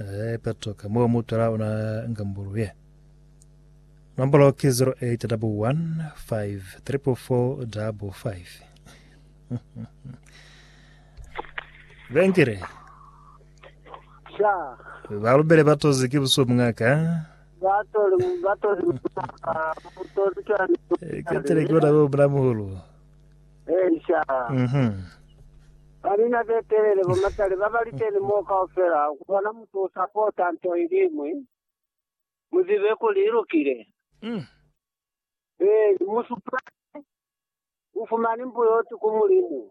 Ee, Petro, ka mo u mu twela ona nga mbuluye. Nombolo ki 0815445555. Vengile, Sha. ba lubele ba tozi ki busubu mwa ka. Ba toli, ba toli maka. Mutoli kani. Ketele ki bona bo mulamuhulu. Eisha. Mhm. Ba mina be telele, bo matali ba ba liteni moo kaufela, ku bona mutu u sapota nto iliñwi, mu zibe kuli i lukile. Mm. Ee, ni musupali u fumani mbuyoti ku Mulimu.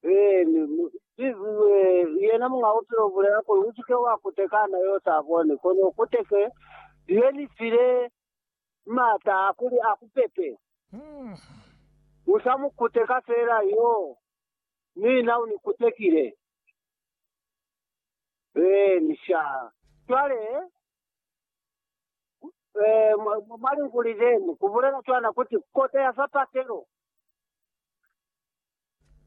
Ee, ni mu, i, ee, yena Muñ'a Bupilo u bulela kuli, U si ke wa kutekana yo u sa boni, kono u kuteke liye li file maata a kuli a ku pepe. U sa mu kuteka feela yo, mina u ni kutekile. Ee, misha. Cwale, ee, mwa linguli lenu, ku bulela cwana kuti, kota ya sapatelo.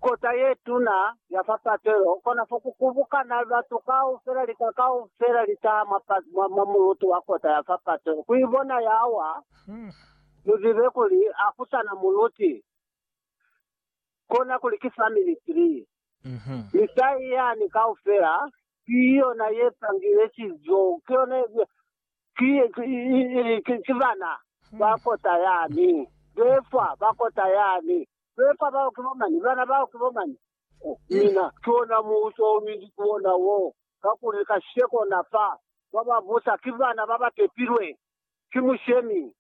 Kota ye tuna ya fa Patelo, kona fo ku kubukana batu kaufela, lika kaufela li taha mwa, mwa, mwa mulutu wa kota ya fa Patelo ku ibona ya wa. Mu zibe kuli a ku sana muluti, kona kuli ki family tree. Mi tahi yani kaufela ki yona ye pangile cizo, ki yona, ki, ki, ki, ki bana ba kota yani, be fa ba kota yani. Pepa bao ki bo mani? Bana bao ki bo mani? Ku mina, ki ona muuso o minzi ki ona wo, kakuli kasheko na fa ba ba busa ki bana ba ba tepilwe ki mushemi.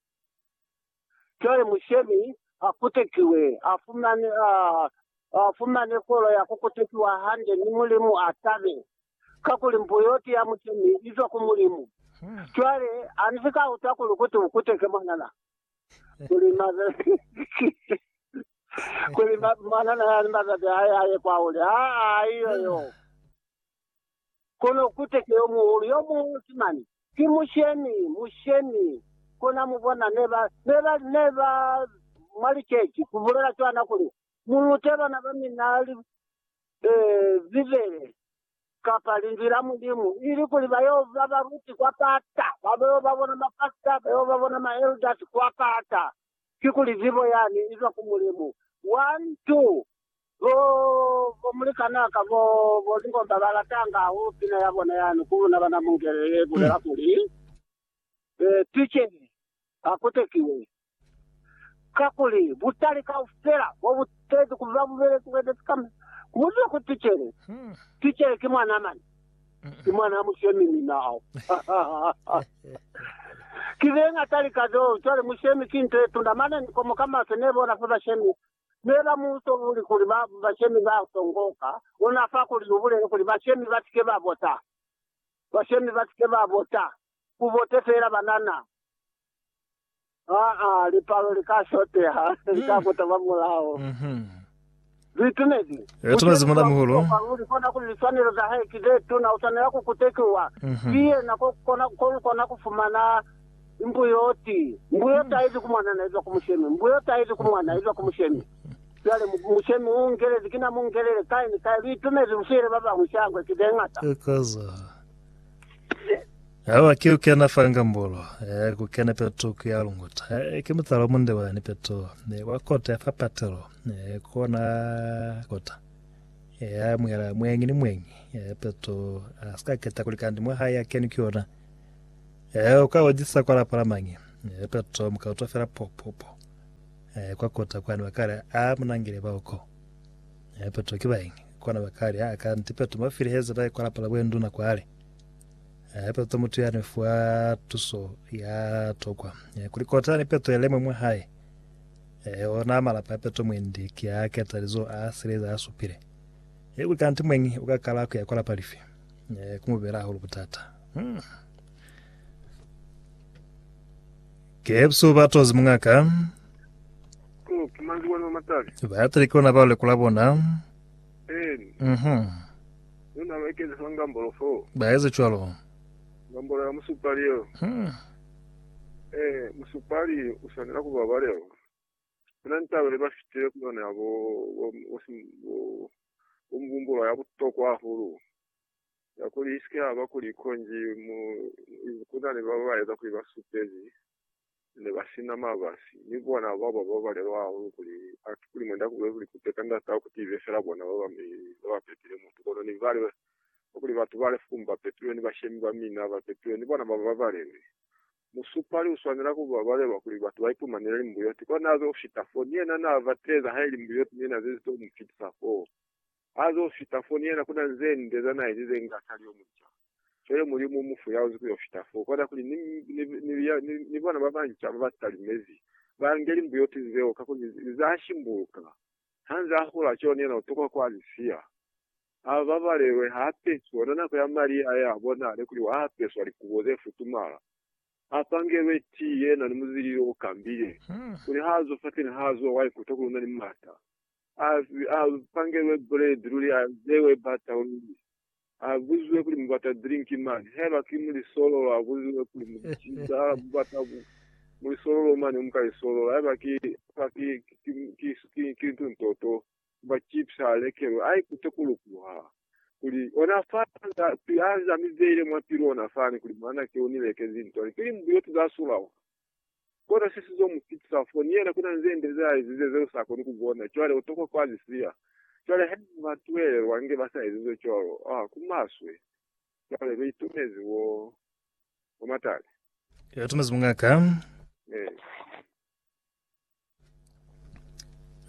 Cwale mushemi a kutekiwe, a fumane, a, a fumane kolo ya ku kutekiwa hande, mi Mulimu a tabe. Kakuli mbu yoti ya mushemi izwa ku Mulimu. Cwale, ani si ka utwa kuli kuti ukute ke mwanana, kuli mazati, kuli ma, mwanana yani mazati aye aye kwa hule. Aa, iyo yo. Kono ukute ke yo muhulu, yo muhulu ki mani? Ki mushemi, mushemi. Kona mubona, ne ba, ne ba, ne ba mwa liceji, kubulela cwana kuli, Mulute bana ba mina li, Ee, Bibele, kapa Linzwi la Mulimu, ilikuli ba yo ba baluti kwa pata, ba yo ba bona mapasita, ba yo ba bona maelders kwa pata, kikuli zibo yani izwa ku Mulimu. One, two. Bo, bo mulikanaa ka bo, bo lingomba ba latanga hahulu pina ya bona yani ku luna bana mungele ye bulela kuli, Ee, Tucele, ha kutekiwe, Kakuli butali kaufela bo bu tezi ku ba mubeleki we bezi kamba ku muziba kuli ticele, ticele ki mwanaa mane, ki mwanaa mushemi ni nao. Ki ze ñata lika zeo. Cwale mushemi ki nto ye tuna. Mane ni komo ka maswe ne bona fa bashemi ne ba mu tobuli kuli ba bashemi ba tongoka. Ona fa kuli u bulele kuli bashemi ba si ke ba bota. Bashemi ba si ke ba bota. Ku bote fela banana. Aa, lipalo li ka shoteha, li ka kuta ba mulao. Mhm. Lu itumezi? Lu Musheli itumezi, Mulimu wa Mulamuhulu. butuhwa kwanu, li kona kuli liswanelo za hae ki ze tuna. U swanela ku kutekiwa. Mhm. Ki yena ko kona, ko lu kona ku fumana mbuyoti. Mbuyo taizi ku mwana na izwa ku mushemi. Mbuyo taizi ku mwana, izwa ku mushemi. Cwale mu- mushemi u ngelezi, kina mu ngelele kai ni kai. Lu itumezi, lu file ba bañwi shangwe ki ze ñata. Eka za. Awa ki ukena fa ngambolo, eh, kukena peto kuya lunguta. Eh, ki mutala munde wani peto, eh, wa kota ya fa patelo, eh, kona kota. Eh, ya mwela mwengi ni mwengi, eh, peto, ah, sika keta kuli kandi mwa haya keni ki yona. Eh, uka wajisa kwa lapa la mangi, eh, peto muka utwa fela po, po, po. Eh, kwa kota kwani wakale, ah, munangile ba uko. Peto ki baingi, kona bakali ha ka nti Peto mo filiheza bai kwa lapa la buenduna kwale. Peto mutu yani fuwa tuso ya tokwa. Kuli kota ni Peto yelemwe mwa hae. Ona malapa ya Peto mwendi ki a keta lizo a sile za supile. Kuli ka nti mweñi uka kala kuya kwa lapa lifi, kumubela hahulu butata. Kebsu ba tozi mungaka. Oh, ki manzi wani wa matabi. Ba tili kona ba lekola bona. Eeni. Mhm. Yo nalo ekezi fa ngambolo fo. Ba ezi cwalo. Ngambolo ya musupali yo. Hmm. Eh, musupali u swanela kuba wa leo. Kuna ni taba leba fitile ku yona ya bo, bo, bo, bo, bo mubumbulo ya butokwa hahulu. Ya kuli isike yaba kuli konji mu kuna ni baba baeza kuli ba supezi ne ba sina mabasi, mi bona baba ba balelwa hahulu kuli atu kuli mwenda kube kuli kuteka ndatao kuti ibe fela bona baba mi baba pepile mutu. Kono ni bale kwa kuli batu bale fukumi ba pepilwe ni bashemi ba mina ba pepilwe ni bona baba ba balelwi. Musupali uswanela kuba balelwa kuli batu ba ipumanele limbuyoti, kona azo fita foo. Ni yena na bateza haili mbuyoti ni yena zezi to mu fitisa foo. Ha zo fita fo, ni yena ku na ze nde za na ezize inge a sa li yo munca. Cwale Mulimu u mu fuyaozi ku yo fita fo. Kwata kuli, Ni, ni, ni, ni, ni bona ba banca ba ba talimezi, ba nge limbuyoti zeo, kakuli ni, ni za shimbuluka. Ha nze a hula, cwalo ni yena u tokwa ku a li siya. A babalelwe, ha apeswi ona nako ya mali a ye a bonale kuli wa apeswa likubo ze futumala. A pangelwe tii yena ni muzilili o kambile, kuli ha zo fateni ha zuwa wa ikuta kuli una ni mata. A pangelwe buledi luli a zewe bata luli. A buziwe kuli mu bata drink mane. Haiba ki mulisololo a buziwe kuli mu ciza mu bata mulisololo mane mu ka lisolola. Haiba ki lintu ntoto mba chips a lekelwe. A ikute ku lukuha kuli ona fa a zamizeile mwa pilu ona fani kuli mwanake u ni lekezi ntwani. Ki limbuyo tu za sulaho. Kona se sizo mu fitisa fo, ni yena kuna nze nde ze aezize zeo sa koni ku bona. Cwale utokwa ku azi siya. Cwale haiba ba twelelwa nge ba sa ezize cwalo, oh, ku maswe. Cwale lu itumezi wo, wo matale. Lu itumezi mungaka. Amen.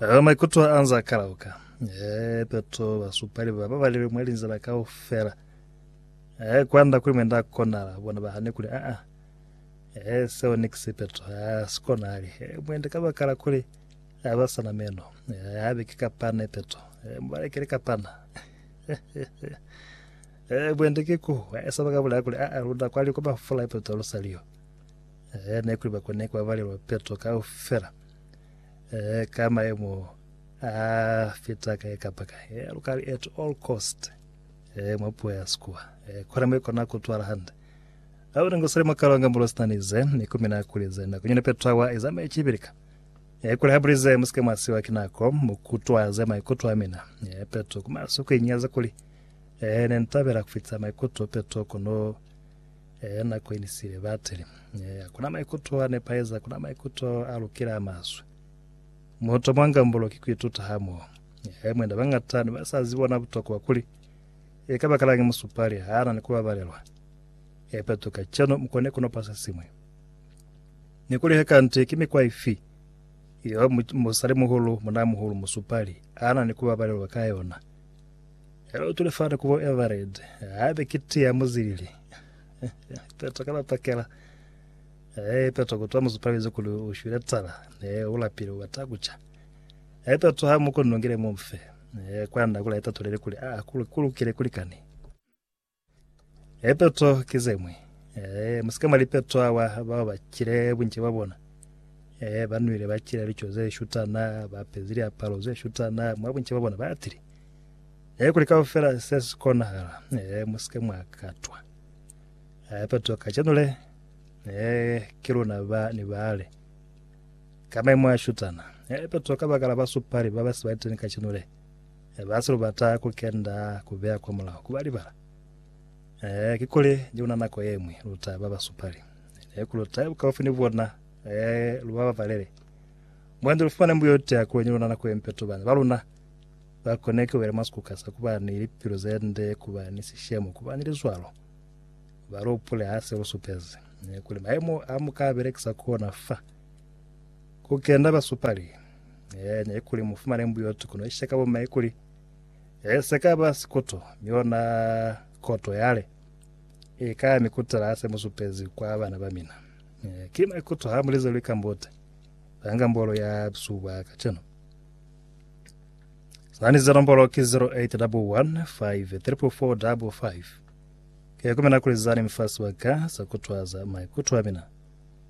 Ela maikuto anze a kalauka. Eh, Petro ba supali ba ba balebe mwa linzila kaufela. Eh, kwanda kuli mwenda konala bona ba hane kuli a a. Eh, seo ni kisi Petro a sikonali. Eh, mwenda ka bakala kuli a ba sana meno. Eh, habe ke kapana Petro. Eh, mubalekele kapana. eh, mwenda ke ku. Eh, sabaka bulaya kuli a a lunda kwali kwa bafula Petro lusaliyo. Ehe, nekuli bako ne kwa balelwa peto kaufela. Ehe, ka maemo a fita kae kapa kae. Ehe, lukali at all cost. Ehe, mwa puo ya Sikuwa. Ehe, kona mwe kona kutwala hande. Awu nengo sele makalonga mulo sinanize, nikumina kulize nako nyene peto awa izama ichibilika. Ehe, kuli habulize musike mwasiwa kinako, mukutwaze maikuto amina. Ehe, peto kuma suku inyaza kuli. Ehe, nentabela kufita maikuto peto kono Ee, na koenisile bateli. Ee, hakuna maikuto a nepaeza, hakuna maikuto a lukela a maswe. Muhuto mwa ngambulo ki kuituta hamoho. Ee, mwena bangata ne ba sa zibi ona butokwa kuli e ka bakalañi musupali ha na ni kubabalelwa. Ee, petu kacenu mu kone kunopa se siñwi. Ni kuli he kanti ki mikwa ifi yeo musalimuhulu, munamuhulu, musupali a na ni kubabalelwa ka yona. Hello to the father kubo Everett. Habe kiti ya muzilili. Peto kala pakela. Eh peto kutwa muzupalize kuli ushwile tsala. Eh ulapile ubata kucha. Eh peto ha muko nongile mumfe. Eh kwanda kula peto lele kuli ah kulukile kulikani. E peto ki ze ñwi. E, mu si ke mwa lipeto awa bao ba cile bunci bwa bona. E, ba nwile, ba cile lico ze shutana, ba apezi liapalo ze shutana, mwa bunci bwa bona ba atile. E, kuli kaufela se si konahala. E, mu si ke mwa katwa. E, peto kacenu le, e, ki luna ba ni bale. Ka maimo a shutana. E, peto kabakala basupali ba ba si ba liteni kacenu le. Eh, basi lu bata ku kenda ku beya kwa mulaho, ku ba libala. Eh, kikuli je kuna nako yemwi lu ta ba basupali. Ne ku lu taye bukaufi ni bona, eh, lu ba babalele. Mwandi lu fumane mbuyo yote ya kuli ni luna nako yempe tu bana ba luna ba kone ku bela mwa sikuka sa ku ba ni lipilu ze nde, ku ba ni sishemo, ku ba ni lizwalo. Ba lu hupule ha se lu supezi, eh, kuli mayemo a mu ka belekisa ku ona fa ku kenda basupali. Eh, ne kuli mufumane mbuyotu kono ishe ka boma ikuli eh, sekaba sikoto miona koto yale e ka mikutela ase musupezi kwa bana ba mina eh, ki maikuto ha mulize lwi kambote banga mbolo ya suba ka cheno sani zero mbolo ki 0811534455 ke kumena kuli zani mfasi wa ka sakutwaza maikuto a mina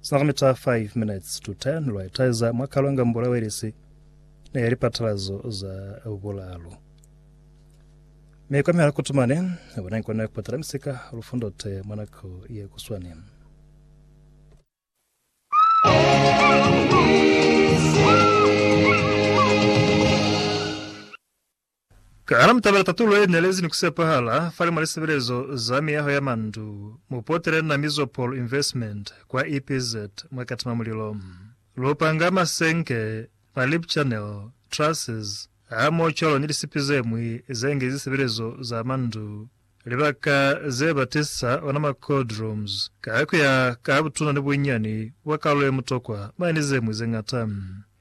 Sinakamita 5 minutes to 10 lwa itaeza mwa kalonga mbula welisi ne ya lipatalazo za bulaalu. Mi kwa mihala kutumani, bona nkona ku patala misika lufundo te mwa nako ye kuswani. Kana mu tabela tatulo ye nelezi ni ku sepahala fale mwa lisebelezo za miyaho ya mandu? Mu potele na Mizopol Investment kwa EPZ mwa Katima Mulilo. Lu panga masenke, ma lip channel, trusses, hamoho cwalo ni lisipi ze ñwi ze ngi zisebelezo za mandu, libaka ze ba tisa ona ma cold rooms, ka ku ya ka butuna ni bunyani bwa kalulo ye mutokwa mwa ni ze ñwi ze ñata.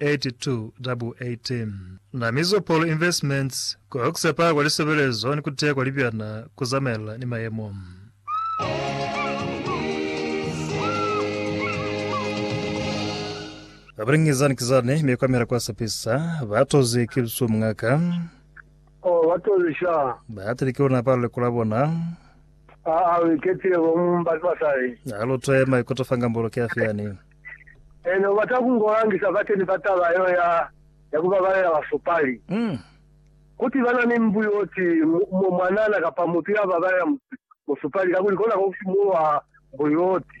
8218 Na Mizopolo Investments ku Oxepa kwa Lisebelezo ni ku Teya kwa Libyana ku Zamaelana ni Mayemo. Ba Bring Zani Ki Zani Me Kwamela Kwa Sepisa Ba Tozi Ki Lusu Mngaka. Oh, ba tozi sha. Ba tili ki luna palo likula bona. Aa, u iketile bo mumba ni basali. Alu twe maikuto fa ngambolo ki afi yani? Ena ubata ku ngo langisa bateni ba taba yeo ya, ya ku babalela basupali. Kuti ba na ni mbu yo ti mo mwanana kapa mutu ya babalela musupali, kakuli kona ko ku simulwa mbu yo ti.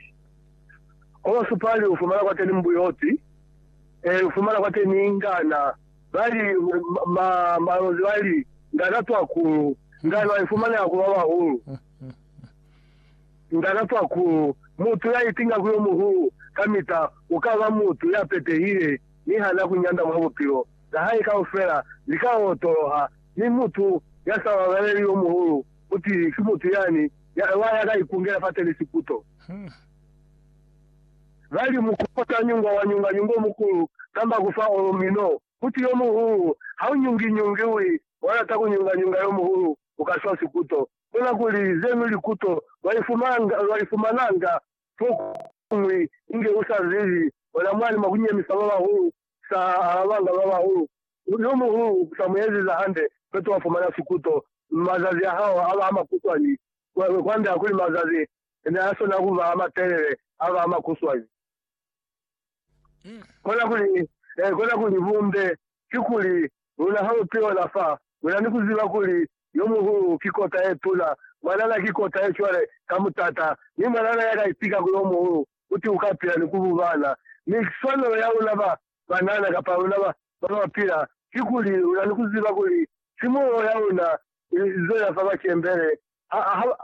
Kwa basupali u fumana kwateni mbu yo ti, ee, u fumana kwateni ngana, ba li, ma, malozi ba li, ngana twakulu, ngano a ifumaneha ku babahulu. Nda lapa ku mutu ya itinga ku yo muhulu kamita. U ka ba mutu ya petehile mi ha na ku nyanda mwa bupilo. Za hae kaufela li ka otoloha, mi mutu ya sa babaleli yo muhulu ku ti ki mutu yani ya ewa ya ka ikungela fa telisiputo. Ba li mu kota nyungwa wa nyunga nyunga omukulu kamba ku fa olo mino ku ti yo muhulu, Ha u nyungi nyungi wi wa lata ku nyunga nyunga yo muhulu, u ka swa siputo. Bona kuli zenu likuto lwaifumananga fokuñwi inge usazibi. Ona mwani mwa kunyemisa babahulu, sa alabanga babahulu. Yomuhulu sa mueziza hande, feti wafumana sikuto. Mazazi ahao aba amakuswani, kwand'a kuli mazazi neasona kuba amatelele, aba amakuswani. Kona kuli, e, kona kuli bumbe, kikuli, luna ha lu piola fa, luna ni kuziba kuli Yo Muhulu ki kota ye tuna, mwanana ki kota ye cwale ka mutata, mi mwanana ya ka itika ku Yo Muhulu uti uka pila ni ku bubana. Mi swanelo ya luna ba banana, kapa luna ba ba pila, kikuli, luna ni kuziba kuli simulo ya luna ili zela fa bacembele,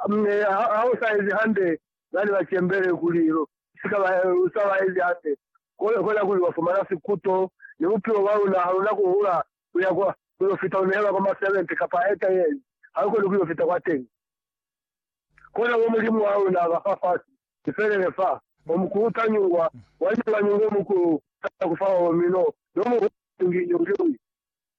Mi ha u sa ezi hande, ba ne ba cembele kuli lu si ka ba, lu sa ba ezi hande, kona kuli wa fumana sikuto, ni bupilo bwa luna ha lu na ku hula ku ya kwa, ku yo fita lu nehelwa kwa masevente kapa eta yeli, ha lu koni ku yo fita kwateñi. Kona mo Mulimu wa luna ba fa fasi, ni felele fa, o mukulu ta nyungwa, wa nyungwa nyungwa o mukulu, ta kufa o mino, no muhulu nyungi nyungi.